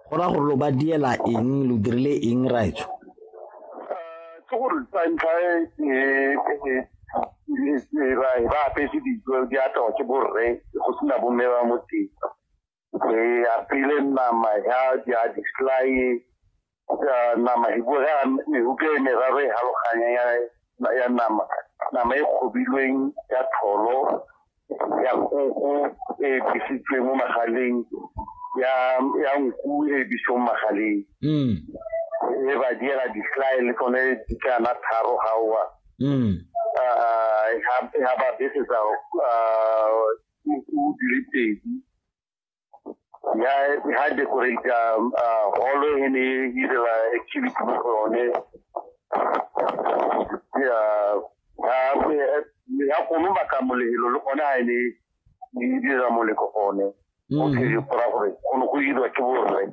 Go raya gore lo ba diela eng, lo dirile eng raetsho? Ke gore sa ntlha e ba ba apetse dijo di apewa ke borre go sena bomme ba mo teng. Re apile nama ya di-slye ya nama e bua ka mehuta e meraro e haloganya ya ya nama nama e kgobilweng ya tholo ya koko e bisitsweng mo magaleng ya ya nku e bisitsweng mo magaleng mm e ba diela di-sly le tsone di kana tharo gaoa mm ha ba besetsa o dile pedi ya ha decorate holo e ne e direla activity mo go yone ya ha ya go mo baka molelo le gone ha e ne e dira moleko gone o tshedi gora gore go ne go dirwa ke borre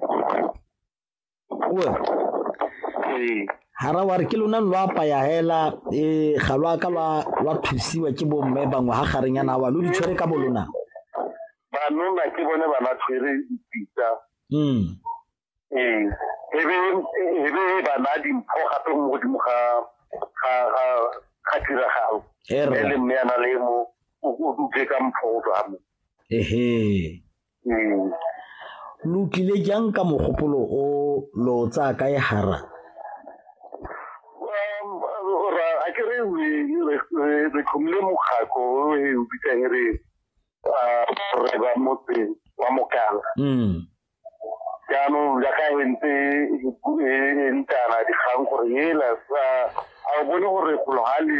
hara wa re ke lona lo apaya hela um ga lo aka lwa thusiwa ke bomme bangwe ga gareng yana wa lo di tshwere ka bolona banona ke bone ba ba tshwere dipitsa hmm. ee ebe bana dimpho gape mo godimo ga tiragalo e le mme yana le mo o dutse ka mpho o tswa mo ehe Mm. lo tlile jang ka mogopolo o lo tsaya kae hara a ke re re tlhomile mokgako o e o bitsang re re ba motse wa mokala mm. jaanong jaaka e ntse e ntana dikgang gore ela a o bone gore golo ga le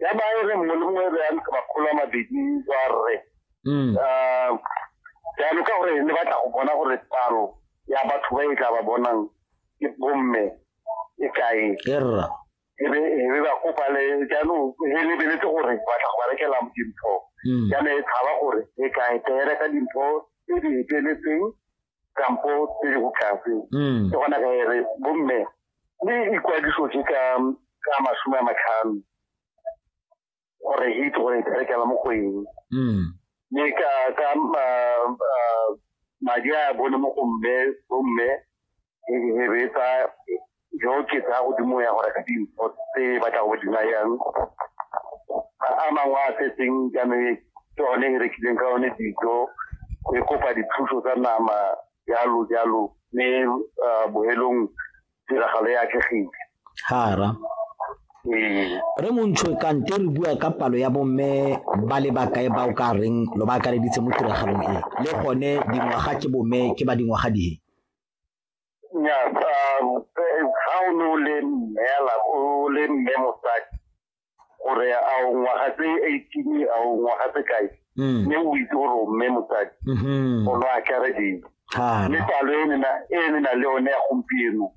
ya ba e re mongwe le mongwe e be ya ntsha makgolo a mabedi wa rre Mm. Ah, jaanong ka gore ne batla go bona gore palo ya batho ba e tla ba bonang ke bomme e kae E rra. e be e be ba kopa le jaanong e lebeletse gore batla go ba rekela dimpho Mm. jaanong e tshaba gore e kae tere ka dimpho tse di eteletseng kampo tse di botlase mm. ke gona ka ere bomme le ikwadiso ke ka ka masome a matlhano gore hit gore berekela mo go eng mm. mme ka ka madi a bone mo go mme bomme e betsa jo ke tsa godimo ya gore ka dimpho tse ba tla go di nayang a mangwe a setseng jaanong e ke one e rekileng ka one dijo e kopa dithuso tsa nama jalo jalo mme ah, bohelong tiragalo e atlegile hara ee re montšho kante re bua ka palo ya bomme ba le bakae ba o ka reng lo ba akareditse mo tiragalong e le gone dingwaga ke bomme ke ba dingwaga dihe Nnyaa, um, eh, ga o ne o le mmela o le mme mosadi gore a o ngwaga tse eighteen a o ngwaga tse kae Mm. mme o itse gore o mme mosadi Mhm. o lo akaredile Thata. mme palo e nena e ne na le one ya gompieno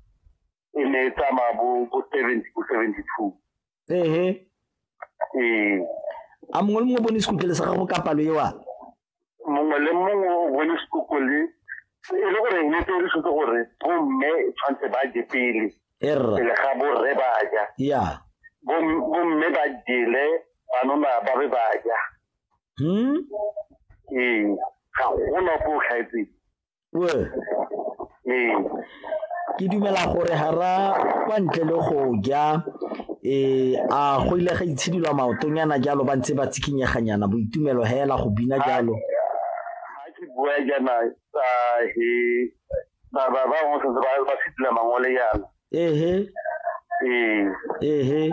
e ne e tsamaya bo bo seventy bo seventy two ehe ee a mongwe le mongwe o bone sekutlele sa gago ka palo ewa mongwe le mongwe o bone sekutlele e le gore ne tse re setse gore bomme tshwanetse ba je pele erra pele ga borre ba ja ya Bom- bomme ba jele banona ba be ba ja hmm ee ga gona ko o tlhaetseng Well, ee ke dumela gore hara kwa ntle le go ja eh a go ile ga itshidilwa maotonyana jalo ba ntse ba tsikinyeganyana boitumelo hela go bina jalo ga ke bua jana tsa he ba ba ba mo setse ba ba fitile mangole yana ehe ee ehe